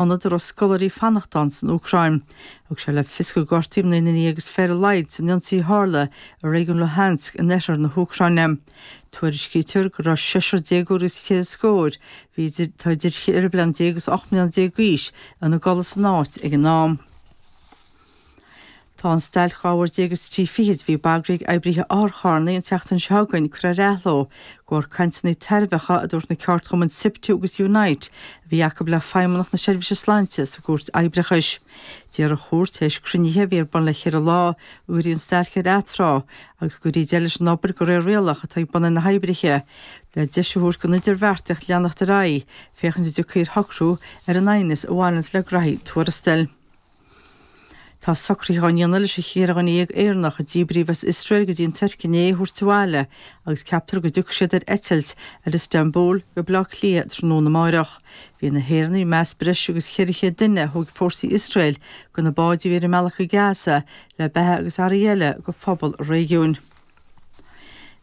ionad a raibh scoláirí fanacht ann san Úcráin. Thug sé le fios go gortaíodh naoi nduine dhéag agus fiche ar a laghad san ionsaí a tharla i réigiún Luhansk in oirthear na hÚcráine. Tuairiscítear go raibh seisear déagóir agus ceithre scór, bhí, atá idir cheithre bliana déag agus ocht mbliana déag d'aois, ina gcodladh san áit ag an am. Tá an stailc dhá uair déag is trí fichid a bhí bagraithe ag oibrithe otharcharrannaí an tseachtain seo chugainn curtha ar athló de bharr cainteanna tairbheacha a dúirt na ceardchumainn Siptu agus Unite a bhí acu le Feidhmeannacht na Seirbhíse Sláinte sa gCúirt Oibreachais. D'iarr an chúirt tar éis cruinnithe a bhí ar bun le cheithre lá go gcuirfí an stailc ar atráth agus go gcuirfí deireadh leis an obair de réir rialach atá ag bun ar na hoibrithe le deis a thabhairt don idirbheartaíocht leanacht ar aghaidh féachaint an dtiocfaí ar shocrú ar an aighneas a bhaineanns le grádaí tuarastail. Tá socruithe á ndéanamh leis an cheithre dhuine dhéag Éireannach a díbríodh as Iosrael go dtí an Tuirc inné a thabhairt abhaile agus ceaptar go dtiocfaidh siad ar eitilt ar Istanbul go Baile Átha Cliath tráthnóna amárach. Bhí na hÉireannaigh i measc breis agus 400 duine a thóg fórsaí Iosrael de na báid a bhí ar a mbealach go Gaza le beatha agus earraí eile do phobal an réigiúin.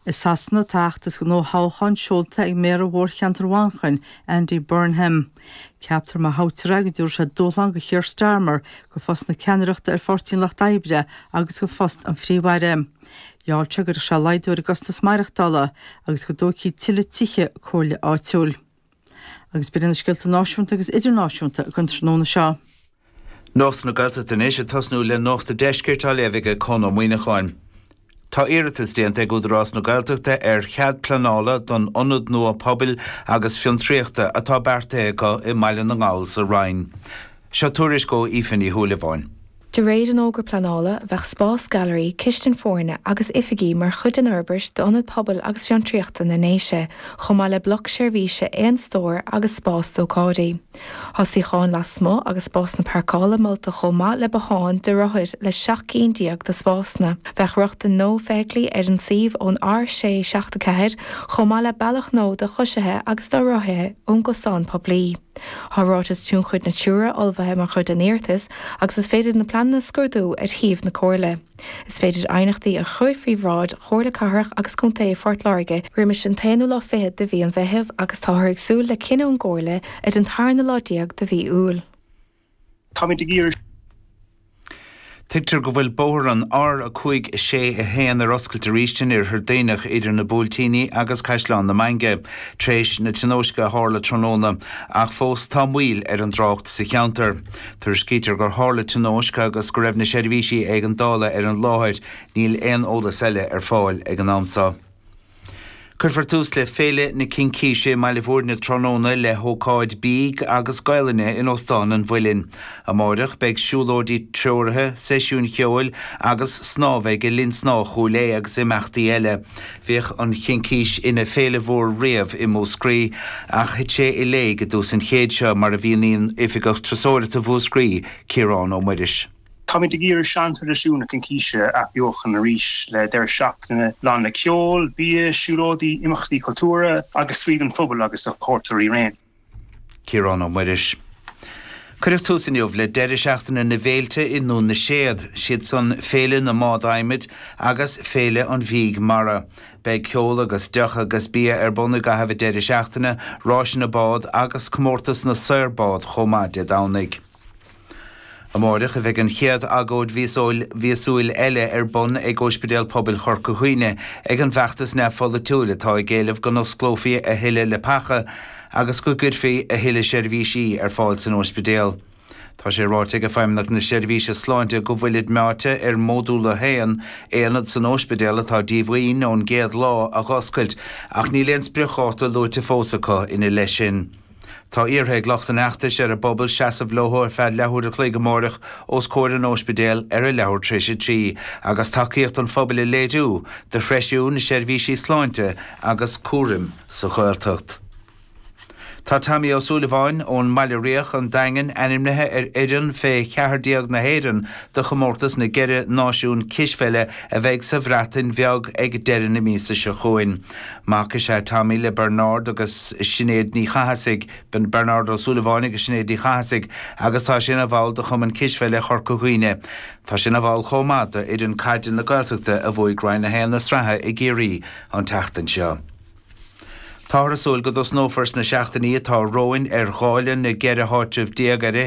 I Sasana tá a fheachtas don fhothoghchán seolta ag Méara Mhórcheantar Mhanchain, Andy Burnham. Ceaptar má thoghtar é go dtabharfaidh sé dúshlán do Keir Starmer do phost na ceannaireachta ar Pháirtí an Lucht Oibre agus do phost an Phríomh-Aire. Gheall sé go gcuirfeadh sé laghdú ar an gcostas maireachtála agus go dtógfaí tuilleadh tithe comhairle áitiúil. Agus b'in iad na scéalta náisiúnta agus idirnáisiúnta againn an tráthnóna seo. Nuacht na Gaeltachta anois, ag tosnú le Nuacht a' Deiscirt á léamh ag Conn Ó Muíneacháin. Tá iarratas déanta ag Údarás na Gaeltachta ar chead pleanála don ionad nua pobail agus fiontraíochta atá beartaithe acu i mBaile na nGall sa Rinn. Seo tuairisc ó Aoife Ní Shúilleabháin. De réir an fhógra pleanála, bheadh spás gailearaí, cistin foirne agus oifigí mar chuid den fhorbairt d'Ionad Pobail agus Fiontraíochta na nDéise, chomh maith le bloc seirbhíse aon stóir agus spás d'ócáidí. Tá suíocháin lasmuigh agus spásanna parcála molta chomh maith le bothán do rothair le seacht gcinn déag de spásanna. Bheadh rochtain nua feithiclí ar an suíomh ón R674 chomh maith le bealach nua do choisithe agus do rothaithe ón gcosán poiblí. Tá ráiteas tionchair Natura ullmhaithe mar chuid den iarratas agus is féidir na pleananna a scrúdú ar shuíomh na Comhairle. Is féidir aighneachtaí a chur faoi bhráid Chomhairle Cathrach agus Contae Phort Láirge roimis an t-aonú lá fichead de mhí an Mheithimh agus táthar ag súil le cinneadh ón gComhairle ar an tarna lá déag de mhí Iúil. Tuigtear go bhfuil bóthar an R561 ar oscailt arís in Oirthear Duibhneach idir na Buailtíní agus Caisleán na Mainge tar éis na tionóisce a tharla tráthnóna ach fós tá moill ar an dtrácht sa cheantar. Tuairiscítear gur tharla tionóisc agus go raibh na seirbhísí éigeandála ar an láthair. Níl aon eolas eile ar fáil ag an am seo. Cuirfear tús le Féile na Cincíse i mBaile Bhúirne tráthnóna le hócáid bídh agus Gaolainne in Óstán an Mhuilinn. Amáireach beidh siúlóidí treoraithe, seisiúin cheoil agus snámha ag Linn Snámha Chúil Aodha agus imeachtaí eile. Bhíodh an Chincís ina féile mhór riamh i Múscraí ach thit sé i léig i dtús an chéid seo, mar a mhíníonn Oifigeach Turasóireachta Mhúscraí, Ciarán Ó Muiris. Táimid ag iarraidh seantraidisiúin na Cincíse a athbheochan arís le deireadh seachtaine lán le ceol, bia, siúlóidí, imeachtaí cultúrtha agus spraoi don phobal agus do chuairteoirí araon. Ciarán Ó Muiris. Cuireadh tús inniu le deireadh seachtaine na bhféilte i nDún na Séad, siad san Féile na mBád Adhmaid agus Féile an Bhídh Mara. Beidh ceol agus deoch agus bia ar bun i gcaitheamh an deireadh seachtaine, ráiseanna bád agus comórtas na saor bád chomh maith Dé Domhnaigh. Amárach a bheidh an chéad agóid mhíosúil eile ar bun ag Óispidéal Pobail Chorca Dhuibhne ag an bhfeachtas neamh-pholaitiúil atá ag éileamh go n-osclófaí a thuilleadh leapacha agus go gcuirfí a thuilleadh seirbhísí ar fáil san óispidéal. Tá sé ráite aige Feidhmeannacht na Seirbhíse Sláinte go bhfuilid meáite ar Mhodúl 1, aonad san óispidéal atá díomhaoin ón gcéad lá, a dh'oscailt ach níl aon spriocdháta luaite fós acu ina leith sin. Tá iarrtha ag lucht an fheachtais ar an bpobal seasamh leo ar feadh leathuair a chloig amárach os comhair an óispidéal ar a leathuair tar éis a trí agus tacaíocht an phobail a léiriú do threisiú na seirbhísí sláinte agus cúraim sa Ghaeltacht. Tá Tommy Ó Súilleabháin, ón mBaile Riach, an Daingean, ainmnithe ar fhoireann fé cheathair déag na hÉireann do chomórtas na gCeithre Náisiún Cispheile a bheidh sa Bhreatain Bheag ag deireadh na míosa seo chugainn. Mac is ea Tommy le Bernard agus Sinéad Ní Chathasaigh, Bernard Ó Súilleabháin agus Sinéad Ní Chathasaigh, agus tá sé ina bhall de Chumann Cispheile Chorca Dhuibhne. Tá sé ina bhall chomh maith d'fhoireann caide na Gaeltachta a bhuaigh Roinn 1 na sraithe i gCiarraí an tseachtain seo. Táthar ag súil go dtosnófar sna seachtainí atá romhainn ar dháileadh na gceithre háitreabh déag ar fhichead.